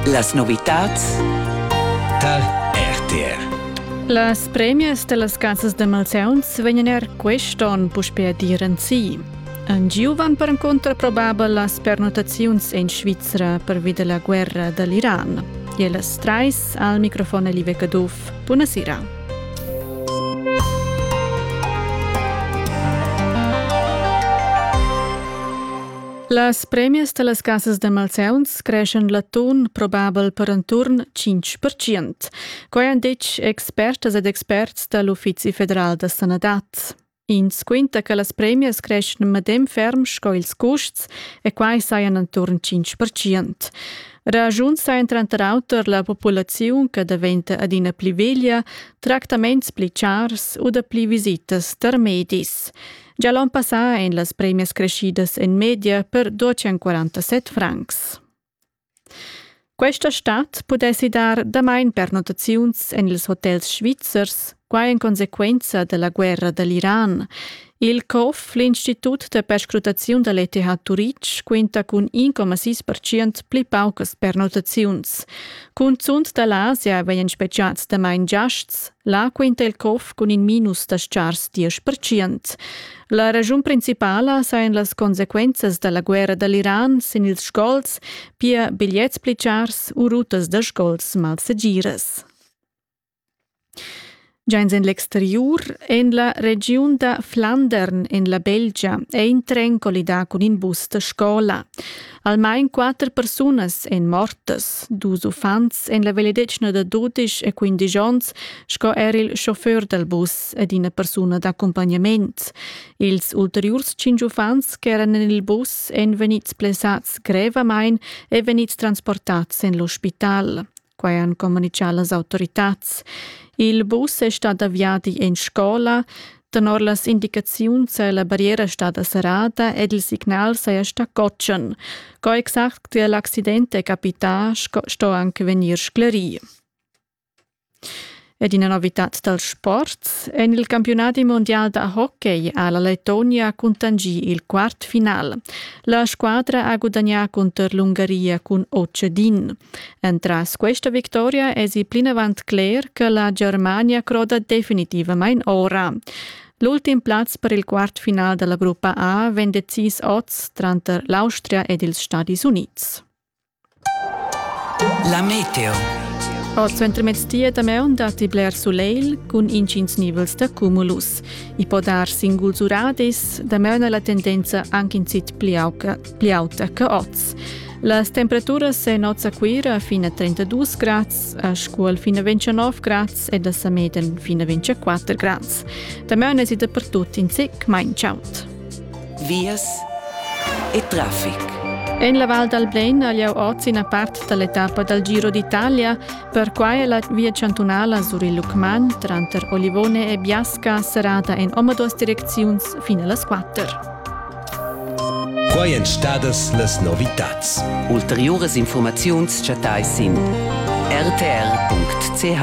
Las novitads tar RTR. Las premias dellas casas de malsauns vegnan er quest'on puspei a dir en si. En giu van perencunter probabel las pernotaziuns en Svizra pervi della guerra dall'Iran. E las trais al microfon Live Caduff. Buonasera. Las premias da las casas da malsauns creschan l'atun probabel per enturn 5%. Quai han ditg expertas ed experts da l'Uffizi federal da sanadad. Ins quinta che las premias creschan medem ferm sco ils custs e quai sajan enturn 5%. Rajuns sajan tranter auter la populaziun che daventa adina pli veglia, tractaments pli chars u da pli visitas tar medis. Gia l'on passà ein las premias creschidas en media per 247 francs. Questa stad pudessi dar damain pernotaziuns en ils hotels svizzers, quai en consequenza della guerra dall'Iran. Il COF, l'Institut da perscrutaziun dall'ETH Turitg, quinta cun 1,6% pli paucas pernotaziuns. Cunzunt dall'Asia vegnan spegiads damain giasts, Là quinta il cof cun in minus da stgars diesch percent. La raschun principala sajan las consequenzas da la guerra dall'Iran sin ils sgols, pia bigliets pli chars u rutas da sgols malsegiras. Giains en l'exteriur, en la regiun da Flandern, en la Belgia, è in tren collidà cun in bus da scola. Almain quatter persunas èn mortas, dus uffants en la vegliadetgna da dudisch e quindisch onns sco er il chauffeur dal bus ed ina persuna d'accumpagnament. Ils ulteriurs cinq uffants ch'eran en il bus èn vegnids blessads grevamain e vegnids transportads en l'ospital. Quai han communitgà las autoritads. Il bus è stà da viadi en scola. Tenor las indicaziuns è la barriera stada serrada ed il signal saja stà cotschen. Co exact che l'accident è capità, sto anche vegnir sclerì. Ed ina novitad dal sport en il campiunadi mondial da hockey ha la Letonia cuntangì il quart final. La squadra ha gudagnà cunter l'Ungaria cun Ocedin. Entras questa victoria èsi plinavant cler che la Germania croda definitivamain ora. L'ultim plaz per il quartfinal della gruppa A vegn decis oz tranter l'Austria ed ils Stati Uniți. La meteo. Oz suentermezdi e damaun datti bler sulegl cun intgins nivels da cumulus. I po dar singuls uradis, damaun è la tendenza anche in zitt pli auta, pli auta che oz. Las temperaturas en oz a Cuira fino a 32 grads, a Scuol fino a 29 grads e da Sameden fino a 24 grads. Damaun è si dappertut in zic mai chaud. vias e traffic. En la Val dal Blen ha lieu oz ina part da l'etappa dal Giro d'Italia. Perquai è la via chantunala sur il Lucmagn tranter Olivone e Biasca serrada en omaduas direcziuns fin a las quatter. Quai èn stadas las novitads. Ulteriuras informaziuns chattais sin rtr.ch.